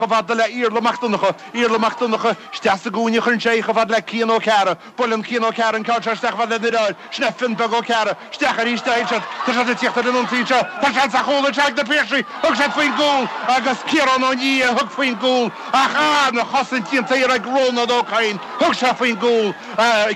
chomh fada le Iarla Mac Donncha, Iarla Mac Donncha isteach sa gcúinne, cuireann sé í chomh fada le Cian Ó Ceara, buaileann Cian Ó Ceara an ceann seo isteach chomh fada le Doire Áir, sna, Fionn Beag Ó Ceara, isteach arís do Sheán, tá siad ag tíocht ar an ionsaí anseo, tá seans ar chúl anseo ag Na Piarsaigh, thug siad faoin gcúl agus Ciarán Ó Nia a thug faoin gcúl ach arna chosaint go tréan ag Rónán Ó Cadhain, thug sé faoin gcúl,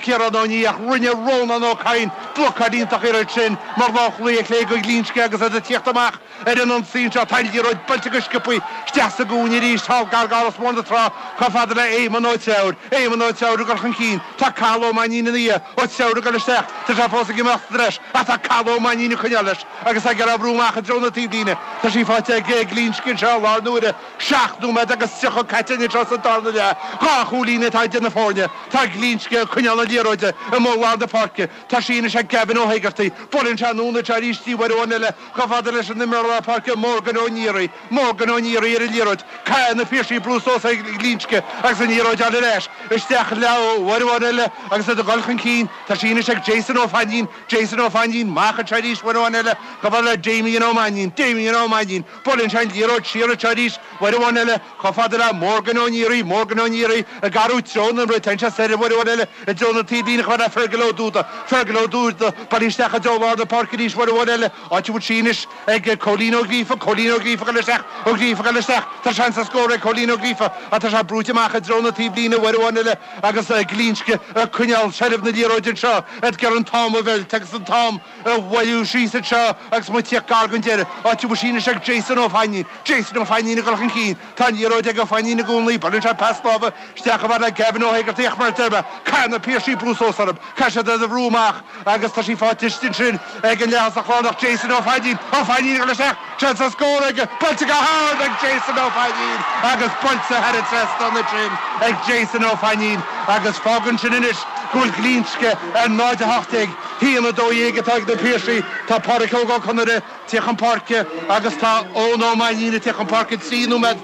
Ciarán Ó Nia, ach rinne Rónán Ó Cadhain blocáil iontach oiread sin mar lánchúlaí ar chlé go Glinsce agus iad ag tíocht amach. Ar an ionsaí anseo, tá liathróid buailte go sciobtha isteach sa gcúinne arís thall gar d'Áras Mór na Trá, chomh fada le Éamonn Ó Treabhair. Éamonn Ó Treabhair ag dul chun cinn. Tá Cathal Ó Mainnín ina dhiaidh. Ó Treabhair ag dul isteach. Tá sé fós ag imeacht sa treis, ach tá Cathal Ó Mainnín ag coinneáil leis agus é ag iarraidh oibriú amach i dtreo na taobhlíne. Tá sí faighte ag Glinsce anseo i lár na huaire. Seacht nóiméad agus tríocha caite anois as an darna leath. Dhá chúilín atá idir na foirne. Tá Glinsce ag coinneáil na liathróide i mbun lár na páirce. Tá sí anois ag Gavin Ó hÉigeartaigh. Buaileann sé anonn anseo arís uair amháin eile. Chomh fada leis an imreoir lár páirce, Morgan Ó Neary, Morgan Ó Neary ar an liathróid, caithfidh na Piarsaigh brú suas ar Ghlinsce agus an liathróid ann ar ais isteach leo uair amháin eile agus iad ag dul chun cinn. Tá sí anois ag Jason Ó Fainnín, Jason Ó Fainnín, amach anseo arís uair amháin eile, chomh fada le Damien Ó Mainín, Damien Ó Mainín, buaileann sé an liathróid siar anseo arís uair amháin eile, Chomh fada le Morgan Ó Neary, Morgan Ó Neary, ag athrú treo na himeartha, téann sé siar uair amháin eile i dtreo na taobhlíne chomh fada le Fergal Ó Dúda, Fergal Ó Dúda, buailte isteach i dtreo lár na páirce arís uair amháin eile, áit a bhfuil sí anois ag Cóilín Ó Gríofa, Cóilín Ó Gríofa, ag goil isteach, Ó Gríofa, ag goil isteach, tá seans ar scór ag Cóilín Ó Gríofa ach tá sé brúite amach i dtreo na taobhlíne uair amháin eile agus Glinsce ag coinneáil seilbh na liathróide anseo, iad ag iarraidh an t-am a mheilt agus an t-am a bhualadh síos anseo agus muid ag tíocht gar don deireadh, áit a bhfuil sí anois ag Jason Ó Fainín. Jason Ó Fainín ag dul chun cinn. Tá an liathróid ag Ó Fainín i gcónaí. Buaileann sé pas láimhe isteach chomh fada le Gavin Ó hÉigeartaigh ach mar a deir mé, caithfidh na Piarsaigh brú suas orthu. Caithfidh siad iad a bhrú amach agus tá sí faighte istigh ansin ag an leathosach lárnach, Jason Ó Fainín. Ó Fainín ag dul isteach. Tá seans ar scór aige! Buailte go hard ag Jason Ó Fainín agus buailte thar an trasnán ansin ag Jason Ó Fainín agus fágann sin anois go bhfuil Glinsce ar 0, 18, a haon, 12 atá ag na Piarsaigh. Tá Páraic Óg Ó Conaire ag tíocht chun páirce agus tá Eoin Ó Mainnín ag tíocht chun páirce trí nóiméad,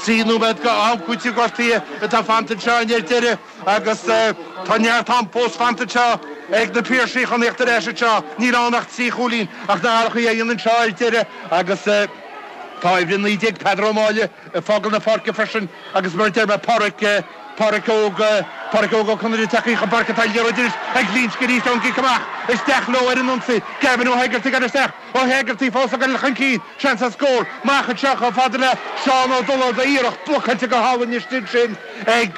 trí nóiméad d'am cúitimh gortaithe atá fanta anseo ar deireadh. Agus tá neart am fós fanta anseo ag Na Piarsaigh chun tíocht ar ais anseo. Níl ann ach trí chúilín ach na hiarrachtaí a dhéanamh anseo ar deireadh agus tá uimhir 19 Peadar Ó Máille ag fágáil na páirce freisin agus mar a deir mé Pádraic Pádraic Óg Pádraic Óg Ó Conaire ag teacht chun páirce tá an liathróid anois ag Glinsce arís ón gcic amach isteach leo ar an ionsaí Gavin Ó hÉigeartaigh ag dul isteach Ó hEagartaigh fós ag goil chun cinn, seans ar scór amach anseo chomh fada le Seán Ó Dullard a iarracht blocáilte go hálainn istigh ansin ag,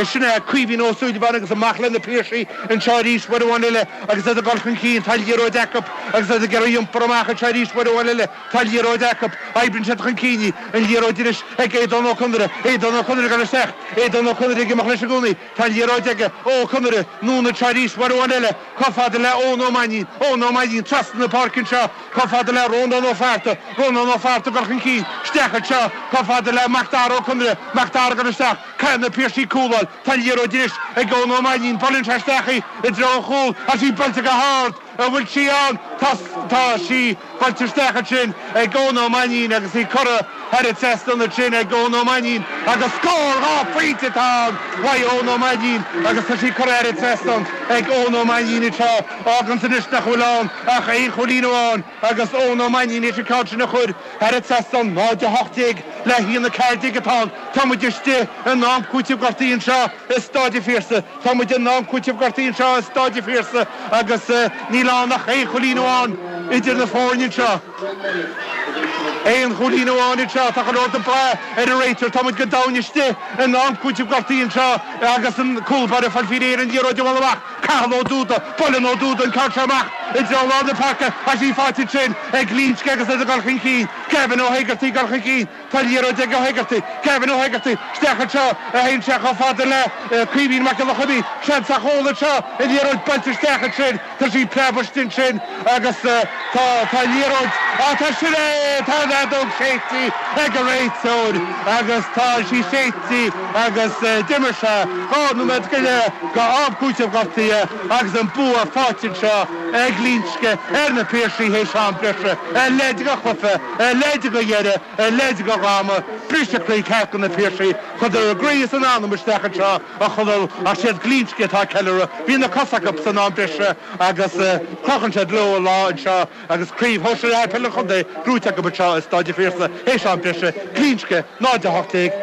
sin é Caoimhín Ó Súilleabháin agus amach le na Piarsaigh anseo arís uair amháin eile agus iad ag goil chun cinn, tá an liathróid acu agus iad ag iarraidh iompar amach anseo arís uair amháin eile, tá an liathróid acu, oibríonn siad chun cinn í, an liathróid anois ag Aodán Ó Conaire, Aodán Ó Conaire ag goil isteach, Aodán Ó Conaire ag imeacht leis i gcónaí. Tá an liathróid ag Ó Conaire, anonn anseo arís, uair amháin eile, chomh fada le Eoin Ó Mainnín, Eoin Ó Mainnín, trasna na páirce anseo, chomh fada le Rónán Ó Fátharta, Rónán Ó Fátharta, ag goil chun cinn, isteach anseo, chomh fada le Macdara Ó Conaire, Macdara, ag goil isteach, caithfidh na Piarsaigh cúl a fháil, tá an liathróid anois ag Eoin Ó Mainnín, buaileann sé isteach í, i dtreo an chúil, agus í buailte go hard! An bhfuil sí ann? Tá, tá sí buailte isteach ansin ag Eoin Ó Mainnín agus í curtha thar an trasnán ansin ag Eoin Ó Mainnín agus scór! Dhá phointe atá ann! Uaidh Eoin Ó Mainnín agus tá sí curtha thar an trasnán ag Eoin Ó Mainnín anseo. Fágann sé anois nach bhfuil ann ach aon chúilín amháin agus Eoin Ó Mainnín théis an ceann sin a chur thar an trasnán. 0, 18 le haon, 14 atá ann. Tá muid istigh in am cúitimh gortaithe anseo i Stáid an Phiarsaigh. Tá muid in am cúitimh gortaithe anseo i Stáid a' Phiarsaigh agus níl ann ach aon chúilín amháin idir na foirne anseo. Aon chúilín amháin anseo, tá go leor dhe ag brath ar an réiteoir. Tá muid go domhain istigh in am cúitimh gortaithe anseo agus an cúlbáire ag fáil faoi réir an liathróid a bhualadh amach, Cathal Ó Dúda. Buaileann Ó Dúda an ceann seo amach i dtreo lár na páirce ach tá sí fáighte ansin ag Glinsce agus iad ag dul chun cinn. Gavin Ó hÉigeartaigh ag dul chun cinn. Tá an liathróid ag Ó hEigeartaigh. Kevin Ó hEigeartaigh isteach anseo, a théann sé chomh fada le Caoimhín Mac Giolla Choinnigh. Seans ar chúl anseo, an liathróid buailte isteach ansin, tá sí ag preabadh istigh ansin agus tá tá an liathróid, á tá sin é! Tá an fheadóg séidte ag an réiteoir agus tá sí séidte agus d'imir sé dhá nóiméad go leith d'am cúitimh gortaithe agus an bua fáighte anseo ag Glinsce ar na Piarsaigh théis am breise. A leithéid de chluiche. a leithéid de dheireadh, a leithéid de dhráma, briseadh croí ceart do na Piarsaigh chuireadar a gcroí is a n-anam isteach anseo a Chonaill, ach siad Glinsce atá ag ceiliúradh, bhí na cosa acub san am breise agus crochann siad leo an lá anseo agus craobh Shóisear Peile an Chontae gnóite acub anseo i Stáid an Phiarsaigh, théis am breise, Glinsce, 0-18, na.